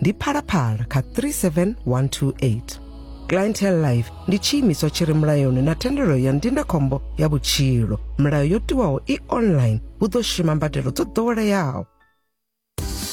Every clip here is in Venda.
ndi phalaphala kha 37128 clientele life ndi tshiimiswa tshi re mulayoni na thendelo ya ndindakhombo ya vhutshilo milayo yo tiwaho i online hu ḓo shuma mbadelo dzo ḓoweleaho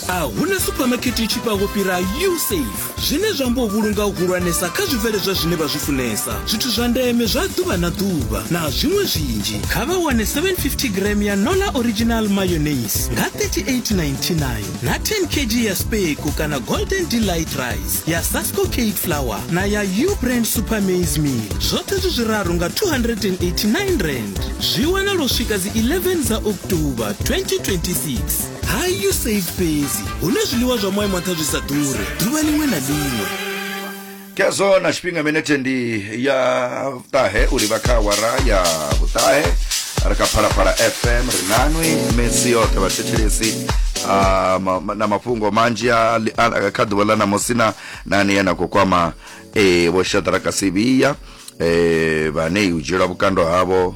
a huna suphamakete i tshifhaho fhira usafe zwine zwa amba u vhulunga u hulwanesa kha zwibveledzwa zwine vha zwi funesa zwithu zwa ndeme zwa ḓuvha na ḓuvha na zwiṅwe zwinzhi kha vha wane 750 gram ya nola original mayonnaise nga 3899 na 10 kg ya speku kana golden delight rice ya sasco cade flour na ya u brand super maize meal zwoṱhe zwi zwiraru nga 289 rand zwi wana lwo swika dzi 11 dza oktoba 2026 hayi u save fhedzi hune zwiḽiwa zwa moya mwaṱha zwi sa ḓure ḓuvha ḽiṅwe na ḽiṅwe khezwo na tshifhinga minete ndi ya vhuṱahe uri vha kha awara ya vhuṱahe ri kha phalaphala fm ri nanwi misi yoṱhe vhathetshelesi ah, ma- ma- na mafhungo manzhi a li- a- kha ḓuvha ḽa ṋamusi na na ane na khou kwama eh, vho shadraka sivhiya eh, vhane u dzhielwa vhukando havho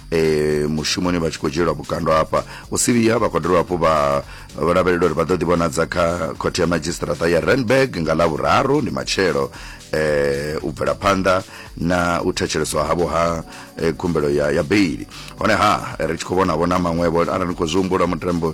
eh, mushumoni vha tshi khou dzhielwa vhukando hafha u sivhiya vha khou dovha hafhu vha vho lavhelela uri vha ḓo ḓivhonadza kha khothe ya madzhisiṱiraṱa ya renberg nga ḽa vhuraru ndi matshelo eh, u bvela phanḓa na u thetsheleswa havho ha eh, khumbelo ya, ya beili honeha ri tshi khou vhonavho na maṅwevho arali ni khou zwi humbula mutambo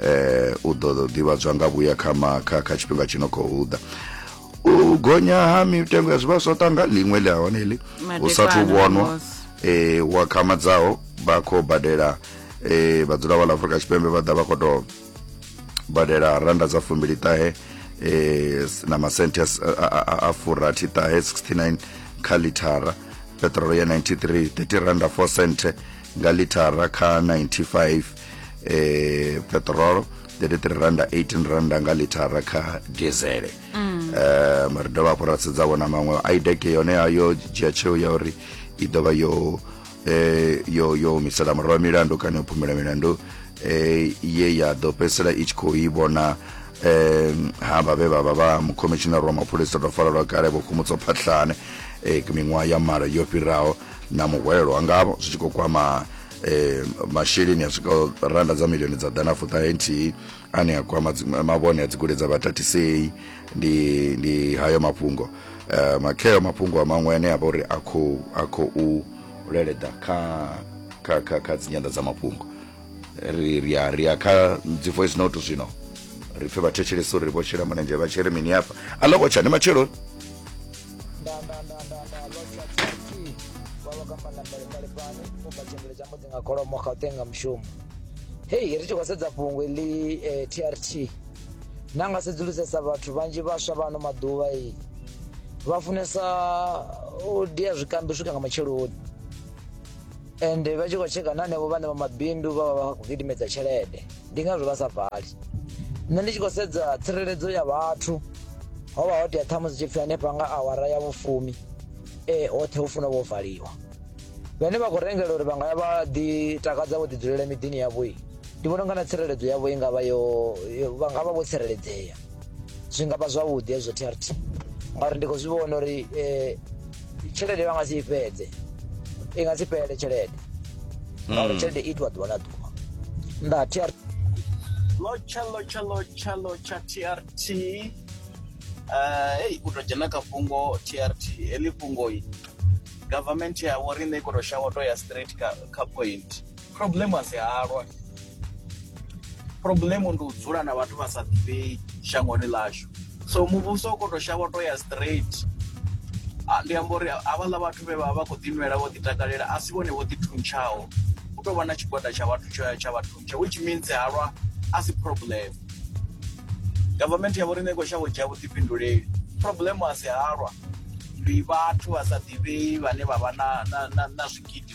eh u ḓo ḓivhadzwa nga vhuya kha kha kha tshifhinga tshi no khou ḓa u gonya ha mitengo ya zwivhaswa tanga ḽiṅwe ḽi hone ḽi hu sathu vhonwa eh wa khamadzaho vha khou badela eh vhadzula vha ḽa Afrika Tshipembe vha ḓa vha khou tou badela randa dza fumbili ṱahe eh na masenthe a furathi ṱahe 69 kha lithara petrol ya 93 30 randa 4 cent nga lithara kha 95 eh petrol the rate ri randa 18 randa nga lithara kha diesel mm. eh mara dovha hafhu ra sedza vhona maṅwe idec yone yo dzhia tsheo ya uri i ḓo vha yo eh yo yo humisela murahu milandu kana yo phumela milandu eh ye ya ḓo fhedzisela i tshi khou i vhona eh ha vha vhe vha vha vha mukomishinara wa mapholisa ḓo farelwa kale vho khomutso phatlhane eh miṅwaha ya mara yo fhiraho na muhwelwa ngavho zwi tshi khou kwama eh masheleni a swikaho randa dza milioni dza ḓana fuṱahe nthihi ane a kwama mavhone a dzikule dza vhatatisei ndi ndi hayo mafhungo eh makheo mafhungo a maṅwe ane a vha uri a khou a khou leleḓa kha kha kha kha dzinyanḓa dza mafhungo ri ri a ri a kha dzi voice note zwino ri pfe vhathetshelesi uri vho shela mulenzhe vha tshele mini hafha a ḽo vho tsha ni matshelo kholomo gauteng nga mushumo hei ri tshi khou sedza fhungo ḽi eh, trt na nga sedzulusesa vhathu vhanzhi vhaswa vha ano maḓuvha i vha funesa u dia zwikambi u swika nga matsheloni ende vha tshi khou tsheka na henevho vhane vha mabindu vha vha vha khou gidimedza tshelede ndi ngazwo vha sa vali nṋe ndi tshi khou sedza tsireledzo ya vhathu ho vha ho tea ṱhamu dzi tshi pfhi hanefha nga awara ya vhufumi ee hoṱhe hu funa vho valiwa vhane vha khou rengela uri vha nga ya vha ḓi takadza vho ḓi dzulela miḓini yavho ndi vhona unga na tsireledzo yavho i ngavha yo yo- vha nga vha vho tsireledzea zwi nga vha zwavhuḓi hezwo trt ngauri ndi khou zwi vhona uri eh, tshelede vha nga si i fhedze i nga si fhele tshelede ngauri tshelede i itiwa ḓuvha na ḓuvha nda trt lotsha lotsha lotsha lotsha trt uh, hey u tou dzhena kha fhungo trt heḽi fhungoi government ya vho riṋe i khou tou shavha u tou ya straight kha, kha point problem a si halwa problem ndi u dzula na vhathu vha sa ḓivhei shangoni ḽashu so muvhuso u koto shavha to ya straight ah, ndi amba uri havhaḽa vhathu vhe vha vha khou ḓinwela vho ḓitakalela a si vhone vho ḓithuntshaho u tou vha na tshigwada tsha vhathu tsho ya tsha vhathuntsha which means halwa a si problem government ya vho riṋe i khou shavha u dzhia vhuḓifhinduleli problem a si halwa ndi vhathu vha sa ḓivhei vhane vha vha na, na, na, na zwigidi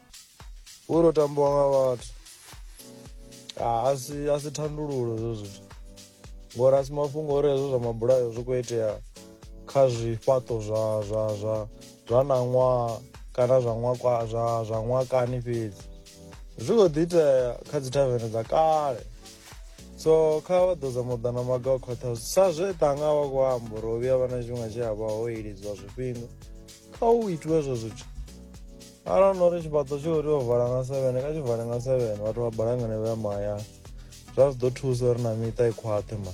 Uri tambiwa nga vhathu ah, a si a si thandululo hezwo zwithu ngori a si mafhungo uri hezwo zwa mabulayo zwi khou itea kha zwifhaṱo zwa zwa zwa zwa ṋaṅwaha kana zwa ṅwakwa zwa zwa ṅwakani fhedzi zwi khou ḓi itea kha dzi thavene dza kale so kha vha ḓo zama u ḓa na maga o khwaṱhaho sa zwe ṱanga vha khou amba uri ho vhuya vha na tshifhinga tshi a vha ho ilidziwa zwifhinga kha u itiwe hezwo zwithu arali no ri tshifhaṱo tshi uri o vala nga seven kha tshi vale nga seven vhathu vha balangane vha ya mahayani zwa zwi ḓo thusa uri na miṱa i khwaṱhe ma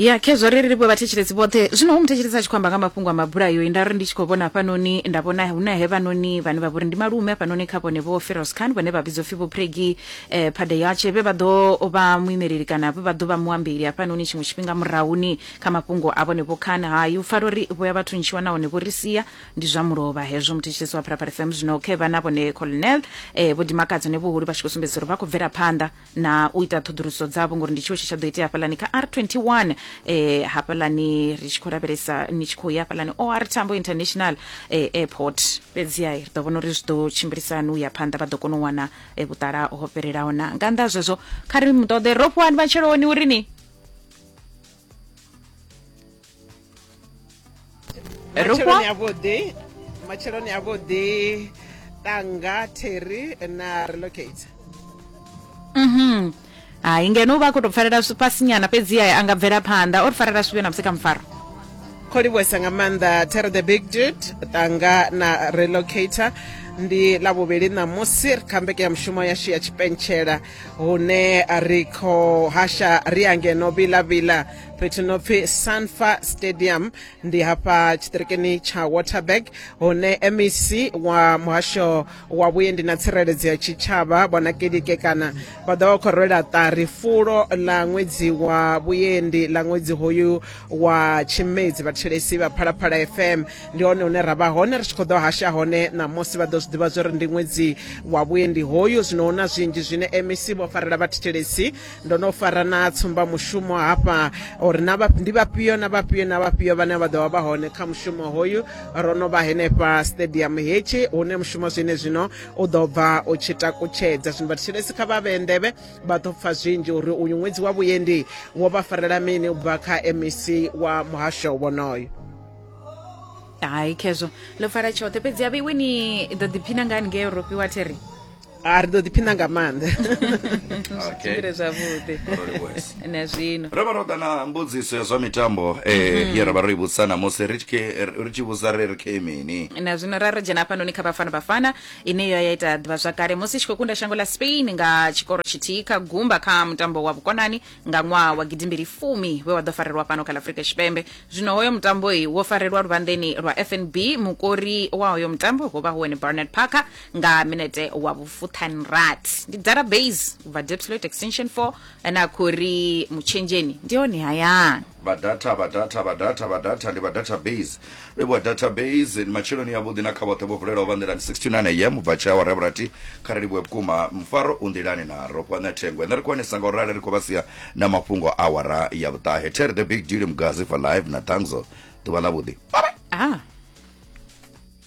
ya khezwo ri ri vha thetshelesi vhoṱhe zwino hu muthetshelesi a tshi khou amba nga mafhungo a mabulayo nda ri ndi tshi khou vhona hafhanoni nda vhona hu na hevhanoni vhane vha vhori ndi malume hafhanoni kha vhone vho feros khan vhane vha vhidzwa pfhi vho pregi eh, phadeyatshe vhe vha ḓo vha muimeleli kana vhe vha ḓo vha muambeli hafhanoni tshiṅwe tshifhinga murahuni Kha mafhungo a vhone Vho Khan, hai, u pfala uri vho ya vha thuntshiwa nahone vho ri sia, ndi zwa mulovha hezwo. Muthetshelesi wa Phalaphala FM zwino khe vha na vhone Colonel eh, Vho Dimakadze ne vhuhulu vha tshi khou sumbedzisa uri vha khou bvela phanḓa na u ita ṱhoḓuluso dzavho ngori ndi tshiwo tshe tsha ḓo itea hafhaḽani kha R21 eh, hafhaḽani ri tshi khou lavhelesa ni tshi khou ya hafhaḽani OR Tambo International eh, Airport. Fhedzi hai, ri ḓo vhona uri zwi ḓo tshimbilisa hani u ya phanḓa vha ḓo kona u wana eh, vhuṱala ho fhelelaho na nga nnḓa ha zwezwo kha ri mu ṱoḓe Rofhiwani Matsheloni uri ni matsheloni avhuḓi matsheloni avhuḓi tanga terry na relocate mhm hai ngeno u vha a khou tou pfalela fhasinyana fhedzi aye a nga bvela phanḓa o ri farela zwivhe na musi kha mufaro kho livhuwesa nga maanḓa terry the big dude tanga na relocator ndi ḽa vhuvhili ṋamusi ri kha mbeke ya mushumo yashu ya tshipentshela hune ri khou hasha ri ya ngeno vilavila fhethu no pfi sanfa stadium ndi hafha tshitirikini tsha waterberg hune mec wa muhasho wa vhuendi na tsireledzo ya tshitshavha vhona kelike kana vha ḓo vha khou rwela ṱari fulo ḽa ṅwedzi wa vhuendi ḽa ṅwedzi hoyu wa tshimedzi vhathelesi vha phalaphala fm ndi hone hune ra vha hone ri tshi khou ḓo hasha hone ṋamusi vha ḓo zwi ḓivha zwori ndi ṅwedzi wa vhuendi hoyu zwino hu na zwinzhi zwine mec vho farela vhathetshelesi ndo no fara na tsumbamushumo hafha uri na vha- ndi vhafhio na vhafhio na vhafhio vhane vha ḓo vha vha hone kha mushumo hoyu ro no vha henefha stadium hetshi hune mushumo zwine zwino u ḓo bva u tshi takutshedza zwino vhathetshelesi kha vha vhee nḓevhe vha ḓo pfa zwinzhi uri uyu ṅwedzi wa vhuendi wo vha farela mini u bva kha mec wa muhasho wonoyo hayi khezwo ḽo pfala tshoṱhe fhedzi avhe iwe ni ḓo ḓiphina nga haningei europe wa theri a ri ḓo ḓiphina nga maanḓa tshimbile zwavhuḓi na zwino ro vha ro ḓa na mbudziso ya zwa mitambo um mhm. ye ra vha ro i vhudzisa namusi ri tshi vhudza ri ri khe mini na zwino ra ri dzhena hafhanoni kha bafana bafana ine yo ya ita ḓivha zwakale musi tshi khou kunda shango ḽa spain nga tshikoro tshithihi kha gumba kha mutambo wa vhukonani nga ṅwaha wa gidimbili fumi we wa ḓo farelwa fhano kha la afurika tshipembe zwino hoyo mutambo i wo farelwa luvhanḓeni lwa fnb mukori wa hoyo mutambo ho vha hu wene barnard parker nga minete wa vhufuthanrat ndi dara base u bva depsloit extension 4 ane a khou ri mutshenzheni ndi hone hayani vha data vha data vha data vha data ndi vha database vhevhuwa database ndi matsheloni yavhuḓi na kha vhoṱhe vho vulelaho vha nḓilani 69 am ubva tshawa ra vhurati kha ri livhuwe vhukuma mufaro u nḓilani na ro kwane thengo ende ri kwanisa nga u rali ri khou vha sia na mafhungo a wara ya vhuṱahe ter the big deal mugazi for live na tangzo ḓuvha ḽa vhuḓi ah.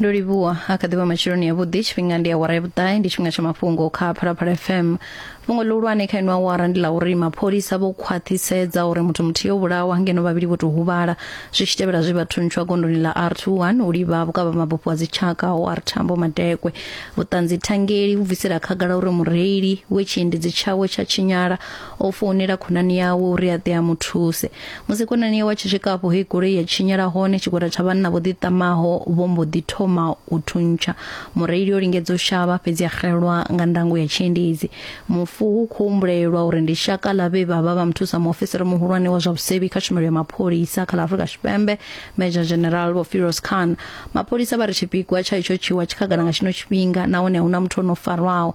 ndo livhuwa a kha ḓivha matshiloni ya vhuḓi tshifhinga ndi awara ya vhuṱahe ndi tshifhinga tsha mafhungo kha phalaphala fm fhungo ḽihulwane kha ino awara ndi ḽa uri mapholisa vho khwaṱhisedza uri muthu muthihi o vhulawa ngeno vhavhili vho tou huvhala zwi tshi tevhela zwe vha thuntshiwa gondoni ḽa r21 u livha vhukavha mabufho a dzitshaka ho r thambo madekwe vhuṱanzi thangeli vhu bvisela khagala uri mureili we tshiendedzi tshawe tsha tshinyala o founela khonani yawe uri a ḓe a mu thuse musi khonani yawe a tshi swika afho he goloi ya tshinyela hone tshigwada tsha vhanna vho ḓiṱamaho vho mbo ḓi thoma u thuntsha mureili o lingedza u shavha fhedzi a xelwa nga ndango ya tshiendedzi mufu hu khou humbulelwa uri ndi shaka ḽa vhe vha vha vha muthusa muofisiri muhulwane wa zwa vhusevhi kha tshumelo ya mapholisa kha ḽa afurika tshipembe major general vho firos khan mapholisa vha ri tshipikwa tsha itsho tshiwa tshikhagala nga tshino tshifhinga nahone a huna muthu o no farwaho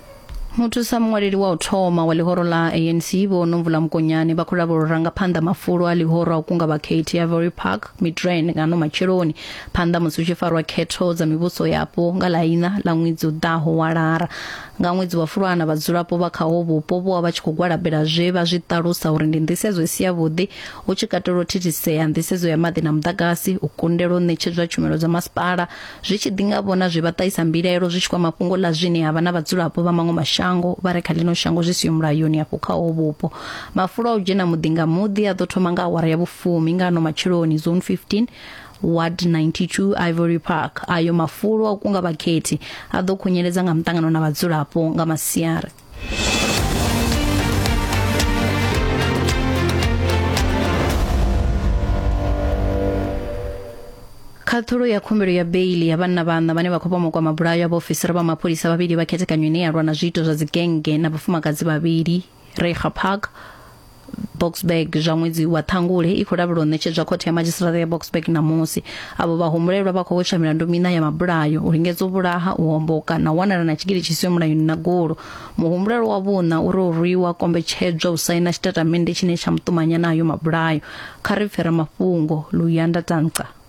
muthusa muṅwaleli wa u thoma wa ḽihoro ḽa anc vho nomvula mukonyane vha khou lavhela urangaphanḓa mafulo a ḽihoro a u kunga vhakhethi ya vory park midrain ngano matsheloni phanḓa musi hu tshi farwa khetho dza mivhuso yapo nga ḽa ina ḽa ṅwedzi u ḓaho wa lara nga ṅwedzi wa fulwana vhadzulapo vha khaho vhupo vho vha tshi khou gwalabela zwe vha zwi ṱalusa uri ndi nḓisedzo isi ya vhuḓi hu tshi katela u thithisea nḓisedzo ya maḓi na muḓagasi u kundelwa u ṋetshedzwa tshumelo dza masipala zwi tshi ḓi nga vhona zwi vha ṱahisa mbilaelo zwi tshi kwama fhungo ḽa zwine ha vha na vhadzulapo vha maṅwe mashango vha re kha ḽino shango zwi siho mulayoni afho kha ho vhupo mafulo a u dzhena muḓi nga muḓi a ḓo thoma nga awara ya vhufumi nga ano matsheloni zone 15 ward 92 ivory park ayo mafulo a kunga vhakhethi a ḓo khunyeledza nga muṱangano na vhadzulapo nga masiari khaṱhulo ya khumbelo ya beili ya vhanna vhanna vhane vha khou pomokwa mabulayo a vhaofisiri vha mapholisa vhavhili vha khethekanyo ine ya lwa na zwiito zwa dzigenge na vhafumakadzi vhavhili reha park boksburg zwa ṅwedzi wa ṱhangule i khou lavhelwa u ṋetshedzwa khothe ya madzhisiṱiraṱa ya boksburg ṋamusi avho vhahumbulelwa vha khou wetsha milandu miṋa ya mabulayo u lingedza u vhulaha u homboka na u wanala na tshigili tshi siho mulayoni na golo muhumbulelwa wa vhuṋa uri o rwiwa kombetshedzwa u saina tshitatamennde tshine tsha muṱumanya nayo mabulayo kha ri pfera mafhungo luyanda tanca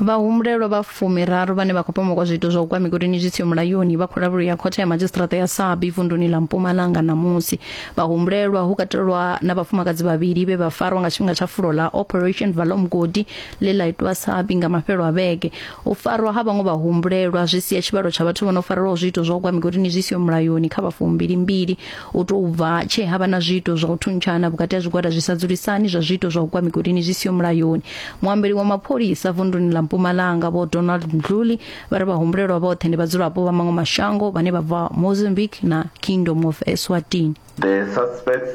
Vhahumbulelwa vha fumiraru vhane vha khou pomoka zwiito zwa u gwa migodini zwi siho mulayoni vha khou lavhelelwa khothe ya madzhisiṱiraṱa ya Sabie vunduni ḽa Mpumalanga ṋamusi. Vhahumbulelwa hu katelwa na vhafumakadzi vhavhili vhe vha farwa nga tshifhinga tsha fulo ḽa Operation Vala Mugodi ḽe ḽa itwa Sabie nga mafhelo a vhege. U farwa ha vhaṅwe vhahumbulelwa zwi sia tshivhalo tsha vhathu vho no farelwaho zwiito zwa u gwa migodini zwi siho mulayoni kha vhafumbili mbili. u tou bva tshe ha vha na zwiito zwa u thuntshana vhukati ha zwigwada zwi sa dzulisani zwa zwiito zwa u gwa migodini zwi siho mulayoni muambeli wa mapholisa vunduni ḽa mpumalanga vho donald mdluli vha ri vhahumbulelwa vhoṱhe ndi vhadzulapo vha maṅwe mashango vhane vha bva mozambique na kingdom of eswatini The suspects